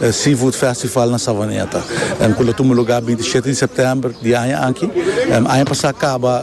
E Seafood Festival na Savaneta, cu lo tuma lugar binti shete di september di aña aki, aña pasa caba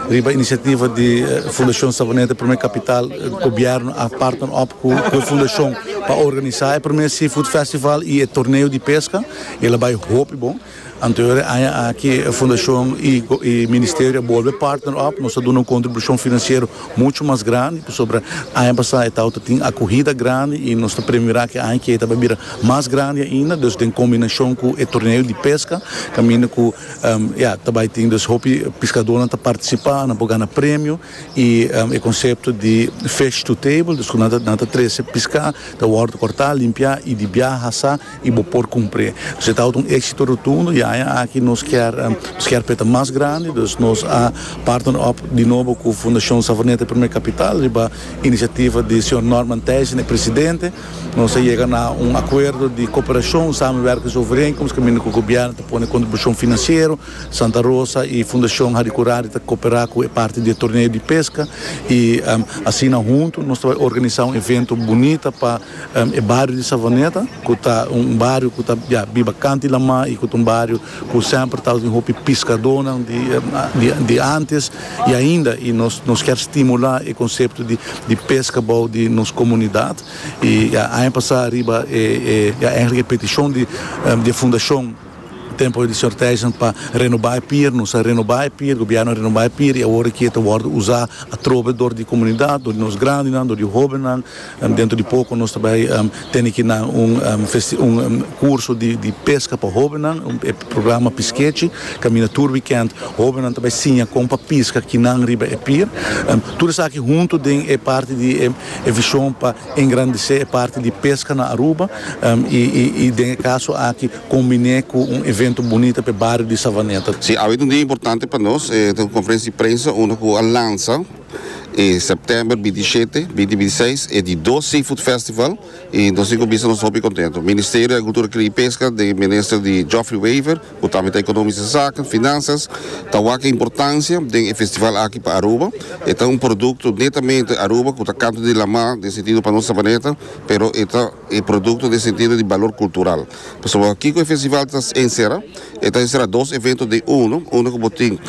riba iniciativa di Fundacion Savaneta Prome Capital, gobierno a partner op cu e fundacion pa organisa e prome Seafood Festival y e torneo di pesca, el a bay hopi bon. Anterior e aña aki e fundashon y ministerio a bolbe partner op, nos a duna un contribucion financiero mucho mas grandi pasobra aña pasa e tawata tin acuhida grandi y nos ta premiora cu e aña kier ta bay bira mas grandi ainda dus den combinacion cu e torneo di pesca caminda cu ya ta bay tin dus hopi piscadornan ta participa nan por gana premio y e concepto di fish to table dus cu nan ta trece pisca ta wordo corta limpia y di bia hasa y bo por cumpre. Dus e tabata un exito rotundo y aña aki nos kier nos kier peta mas grandi dus nos a partner op di nobo cu Fundacion Savoneta Primer Capital riba iniciativa di señor Norman Theisen e presidente nos a yega na un acuerdo di cooperacion samenwerkings overeenkomst caminda cu gobierno ta pone contribucion financiero Santa Rosa y Fundacion Harry Curari ta coopera cu e parti di e torneo di pesca y asina hunto nos ta bay organiza un evento bunita pa E bario di Savoneta ku ta un bario ku ta ya biba kanti lamá i ku ta un bario ku semper ta housin hopi piskadónan di antes i ainda i nos nos kier stimulá e konsepto di peska bou di nos komunidat i ya aña pasá riba e ya èntlik e petishon di e fundashon. Tempo di sorteisnan pa renobá e pier, nos a renobá e pier, gobièrnu a renobá e pier i awor e kier ta wòrdu usá atrobe dor di komunidat, dor di nos grandinan, dor di hóbennan. Dentro di poko nos ta bai tene ki nan un un kurso di peska pa hóbennan, e programa Piskechi. Kaminda tur wikènt hóbennan ta bai siña kon pa piska kinan riba e pier. Tur esaki huntu den e parti di e vishon pa. Engrandisé e parti di peska na Aruba i den e kaso aki kombiné ku un evento bunita pa e bario di Savaneta. Sí, awe ta un dia importante pa nos, e ta un konferensia di prensa unda ku a lansa e sèptèmber binti shete, binti binti seis e di dos Seafood Festival i nos tin ku bisa nos hopi kontentu. Ministerio di Agrikultura Kria i Peska den e minister di Geoffrey Wever ku tambe ta ekonomiese zaken, finansias, ta wak importansia den e festival aki pa Aruba. E ta un produkto netamente Aruba ku ta kantu di Lamá den sentido pa nos Sabaneta, pero e ta e produkto den sentido di balor kultural. Pasobra kiko e festival ta ensera? E ta ensera dos evento den uno, uno ku bo tin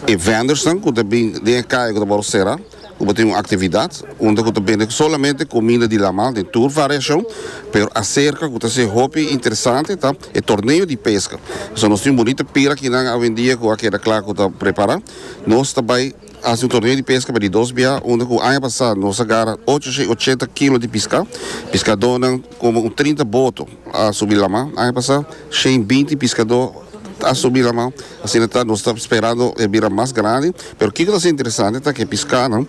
e vendors nan ku ta bin den e kaya ku ta wòrdu sera, ku bo tin un aktividat unda ku ta bende solamente kuminda di laman den tur variashon, pero aserka ku ta ser hopi interesante ta e torneo di peska. So nos tin un bunita pira kinan awendia ku a keda kla ku ta prepara. Nos ta bai hasi un torneo di peska pa di dos bia unda ku aña pasa nos a gara ocho shei ochenta kilo di piska, piskadónan komo un trinta boto. a subi lama. Aña pasá shen binti piskadó a subi lama. Asina ta nos ta sperando e bira mas grandi. Pero kiko ta ser interesante ta ku e piskanan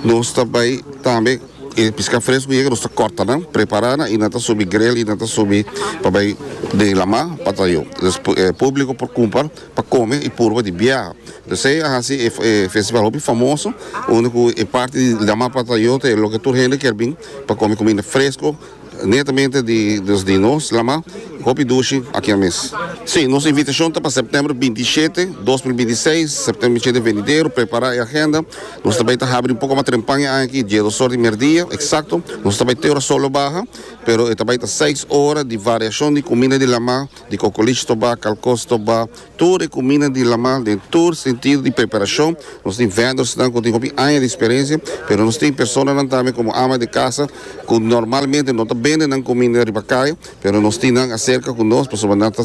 nos ta bai tambe e piská fresku yega nos ta kòrta nan prepará nan i nan ta subi grel i nan ta subi pa bai den lama pa ta yu. Entonces e públiko por kumpa pa kome i purba di biaha. Entonces esei a hasi e festival hopi famoso unda ku e parti di lama pa ta yu ta e loke tur hende kier bin pa kome kuminda fresku Netamente di nos di nos lama hopi dushi akia mes. Si, nos invitashon ta pa sèptèmber binti i shete, dos mil binti i seis, sèptèmber binti i shete venidero, prepará e agenda. Nos ta bai ta habri un poko mas trempan e aña aki, dies osor di mèrdia eksakto. Nos ta bai te ora solo baha, pero e ta bai ta seis ora di variashon di kuminda di lama, di kokolish tobá, kalkos tobá. Tur e kuminda di Lamal den tur sentido di preparashon. Nos tin vendornan ku tin hopi aña di eksperensia, pero nos tin personanan tambe komo ama di kasa ku normalmente no ta bende nan kuminda riba kaya, pero nos tin nan aserka ku nos pasobra nan ta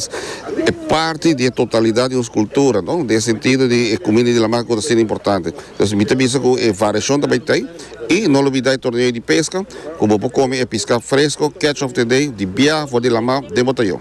e parti di e totalidat di nos kultura, no? Den e sentido di e kuminda di Lamal ku ta ser importante. Entonces mi ta bisa ku e variashon ta bay ta ei i no lo bida e torneo di peska ku bo por kome e piska fresko, catch of the day, di bia for di Lamal den bo tayo.